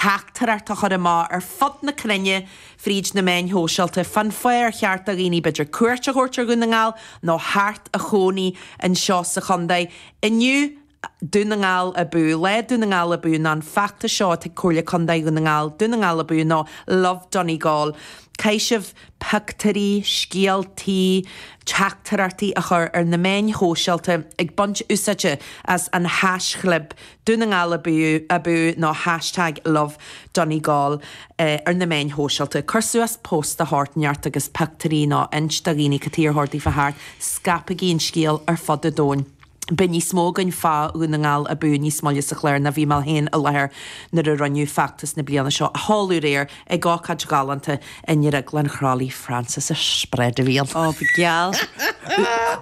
theachtaireacht a chur amach ar fud na cruinne fríd na meáin shóisialta fán fáth ar cheart do dhaoine b'fhéidir cuairt a thabhairt ar Dhún na nGall nó theacht a chónaí anseo sa chontae. Inniu Dún na nGall Abú, Lá Dún na nGall Abú ná an feachtas seo atá ag Comhairle Contae Dhún na nGall, Dún na nGall Abú nó Love Donegal. Caithfidh sibh pictiúirí, scéaltaí, teachtaireachtaí a chur ar na meáin shóisialta ag baint úsáide as an haischlib Dún na nGall abú abú nó hashtag lovedonegal ar na meáin shóisialta. Cuir suas post de shórt inteacht agus pioctúirí nó inis do dhaoine cad chuige ar cheart daofa theacht. Scaipigí an scéal ar fud an domhain. Beidh níos mó againn fá Dhún na nGall abú níos moille sa chlár nó bhí mé féin i láthair nuair a rinneadh feachtas na bliana seo a sheoladh aréir. ag ócáid ghalánta i nDrioglann Chroithlí, Francis a spread real. Oh, bhí geal.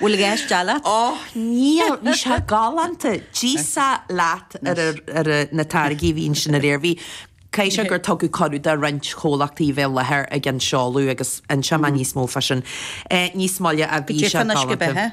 Bhfuil i gceist eile leat? Oh, níl, bhí sé galánta. D'íosfá leat ar na táirgí a bhí ansin aréir. Bhí, caithfidh sé gur tugadh cuireadh do roinnt comhlachtaí a bheith i láthair ag an seoladh agus inseoidh mé níos mó fá sin níos moille a bhí sé galánta.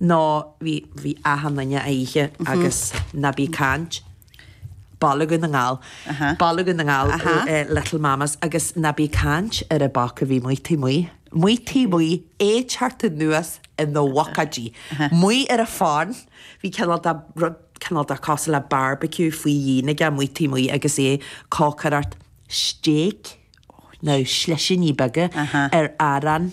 Nó bhí, bhí achan duine ag ithe agus ná bí ag caint. Bolg na nGall. Bolg na nGall, Little Mamas agus ná bí ag caint ar an bhoc a bhí amuigh taobh amuigh. Amuigh taobh amuigh, é ag teacht anuas ina bhuicéidí. Amuigh ar an farm, bhí cineál de, rud cineál de cosúil le barbecue faoi dhíon aige amuigh taobh amuigh agus é ag cócaireacht steak nó slisíní beaga ar arán.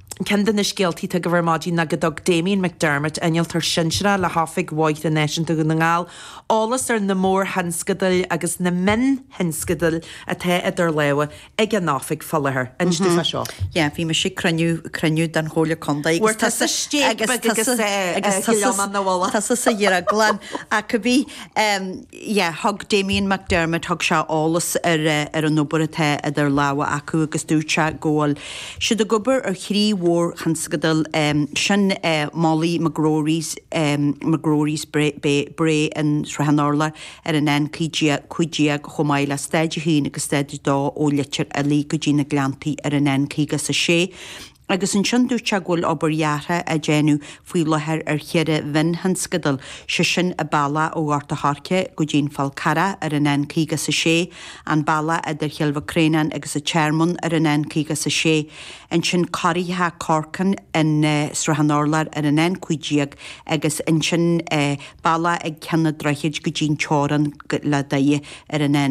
Ceann de na scéaltaí atá agaibh ar maidin ná go dtug Damien McDermott, innealtóir sinsearach le hOifig Bhóithre Náisiúnta Dhún na nGall, eolas ar na mórthionscadail agus na mionthionscadail atá idir lámha ag an Oifig faoi láthair. An ait é seo? Yeah, bhí mise ag cruinniú, cruinniú den Chomhairle Contae agus. Bhfuair tusa steak beag agus eh, eh, gilleán an na bholadh. Tusa sa drioglann, ach bhí, em, yeah, thug Damien McDermott, thug sé eolas ar eh, ar an obair atá idir lámha acu agus dúirt sé go bhfuil siad ag obair ar thrí mhórthionscadal, em, sin eh, Molly McGrory's, em, McGrory's Brae, Bay, Brae i Srath an Urláir ar an N515 chomh maith le Stáid a hAon agus Stáid a Dó ó Leitir Oilí go dtí na Gleanntaí ar an N56, Agus ansin dúirt sé go bhfuil obair dheartha á déanamh faoi láthair ar cheithre mhionthionscadal, sé sin an bealach ó Ghort a' Choirce go dtí an Fál Carrach ar an N56, an bealach idir Chill Mhic Réanáin agus An Tearmann ar an N56, ansin coraíocha Corcam i Srath an Urláir ar an N15 agus ansin bealach ag Ceann an Droichid go dtí an teorainn le Doire ar an